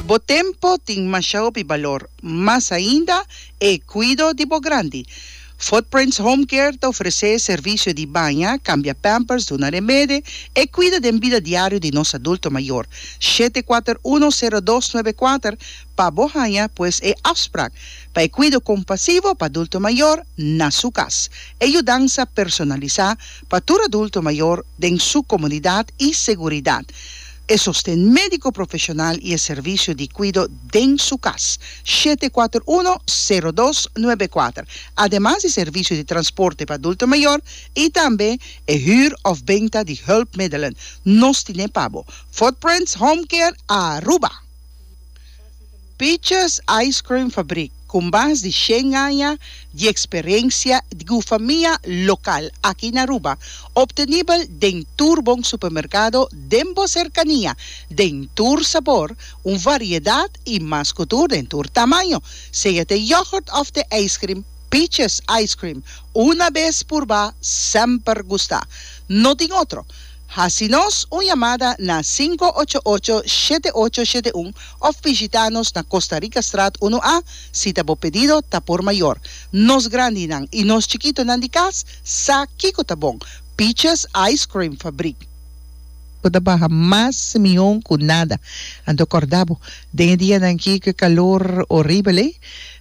Bo tempo tin masha hopi balor, mas ainda e cuido di bo grandi. Footprints Home Care ta ofrece servicio di baña, cambia pampers, duna remede, e cuida den bida diario di nos adulto mayor. Shete kuater uno sero dos nuebe kuater pa bo haña pues e afspraak pa e cuido compasivo pa adulto mayor na su cas. E yudansa personalisa pa tur adulto mayor den su comunidad y seguridad. e sosten médiko profeshonal i e servisio di kuido den su kas, shete kuater uno, sero dos, nuebe kuater, ademas di servisio di transporte pa adulto mayor i tambe e hür òf benta di hùlpmiddelen. Nos tine pa bo. Footprints Home Care Aruba. Peaches Ice Cream Fabrik, ku mas di shen aña di eksperensia di gufamia lokal aki na Aruba, optenibel den tur bon supermerkado den bo serkania, den tur sabor, un variedat i mas ku tur den tur tamaño. Sea t'e yogurt òf t'e ijskrim, Peaches Ice Cream, una bes purbá, semper gustá. No tin otro. Hasi nos un yamada na sinku ocho ocho shete ocho shete un of bishita nos na Costa Rica Straat unu A si ta bo pedido ta por mayor. Nos grandinan y nos chikitonan di cas sa kico ta bon, Peaches Ice Cream Fabriek. Bo ta baha mas mion cu nada. Anto corda bo den e dianan kico e calor horibel ey,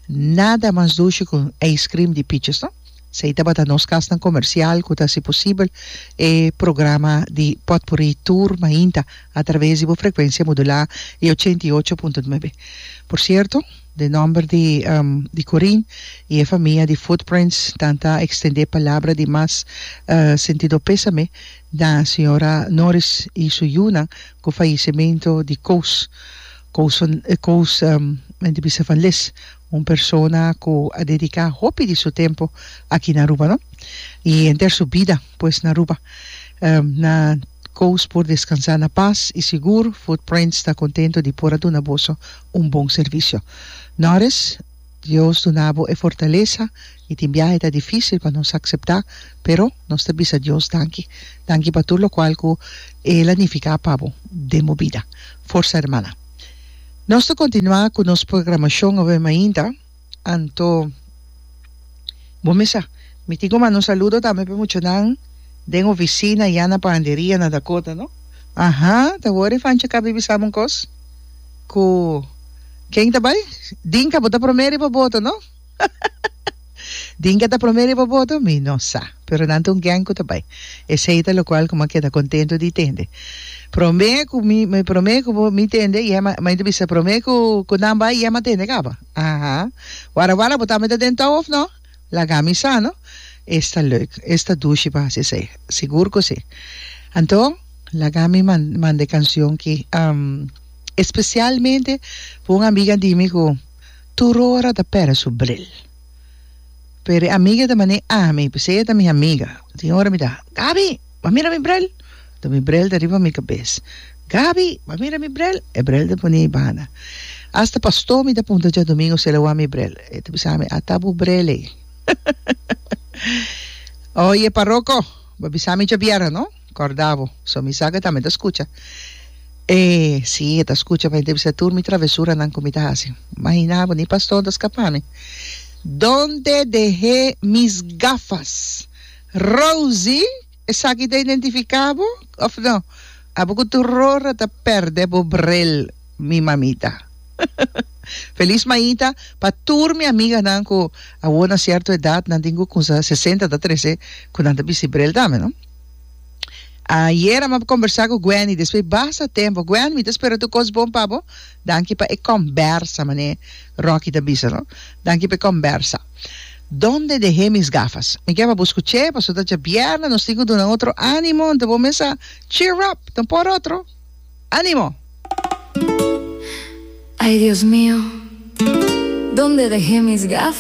nada mas dushi cu un ice cream di Peaches no. Si ey tabata nos kasnan komersial ku ta hasi posibel e programa di Potpurrí Tour mainta a traves di bo frekuensia modulá e ochenta i ocho punto nuebe. Por sierto, den nòmber di di Corín i e famia di Footprints tan ta ekstendé palabra di mas sentido pésame na señora Norris i su yunan ku fayisementu di kous kous kous men ta bisa van les. Un persona cu a dedica hopi di su tempo aki na Aruba, no? Y henter su bida pues na Aruba. Na koos por descansa na pas y sigur Footprints ta contento di por a duna boso un bon servicio. Norris, Dios duna bo e fortaleza y tin biahe ta dificil pa nos acepta, pero nos ta bisa Dios danki. Danki pa tur locual cu El a nifica pa bo den bo bida. Forza hermana. Nos ta kontinuá ku nos programashon awor mainta, anto bo mi sa mi tin ku manda un saludo tambe pa e muchanan den ofisina ya na panderia na Dakota no aha ta hoor e fanchi akaba bibi sama un kos ku ken ta bai Dinka bo ta promé riba boto no. Tin ke ta promé riba boto? Mi no sa, pero nan ta un gèng ku ta bai. Esei ta lokual ku mi a keda kontentu di tende. Promé ku mi, mi promé ku bo, mi tende i Emma, mi ta bisa promé ku ku nan bai i Emma tende kaba. Aha. Wara wara bo ta mete den tou òf no? Laga mi sa no. Es ta lèuk, es ta dushi pa hasi esei. Sigur ku si. Anto, laga mi man, manda e kanshon ki, espesialmente pa un amiga di mi ku. Tur ora ta pèrdè su bril. P'e di amiga ta man'é ami, p'esei ella ta mi amiga. Tin ora mi ta, Gabi, b'a mira mi bril! Ta mi bril ta riba mi kabes. Gabi, b'a mira mi bril! E bril ta ponié banda. Hasta pastó mi ta punta djadumingo si el a wak mi bril. E ta bisa mi, Ata bu bril ei. Oye, paroko, b'a bisa mi djabierna, no? Corda bo, so mi sa cu e tambe ta scucha. E, si, e ta scucha, ma e ta bisa tur mi travesuranan cu mi ta haci. Mahina bo, ni pa ston ta scapa mi. Donde deh'é mis gafas? Rosie, esaki ta identifica bo, of no? Abo cu tur rora ta perde bo bril, mi mamita. Feliz Maita pa tur mi amiganan cu awor na cierto edad nan tin cu cunsa sesenta ta trece cu nan ta bisti bril tambe, no? Ayera m'a kombersá ku Gwendy despues basta tempu. Gwen, mi ta spera tur kos bon pa bo. Danki pa e kòmbersa, manera Rocky ta bisa, no? Danki pa e kòmbersa. Donde deh'é mis gafas? Mi ke pa bo skuch'é pasobra ta dja bièrnè, nos tin ku duna otro ánimo. Anto bo mesa cheer up, ta un por otro. Ánimo! Ay Dios mio, donde deh'é mis gafas?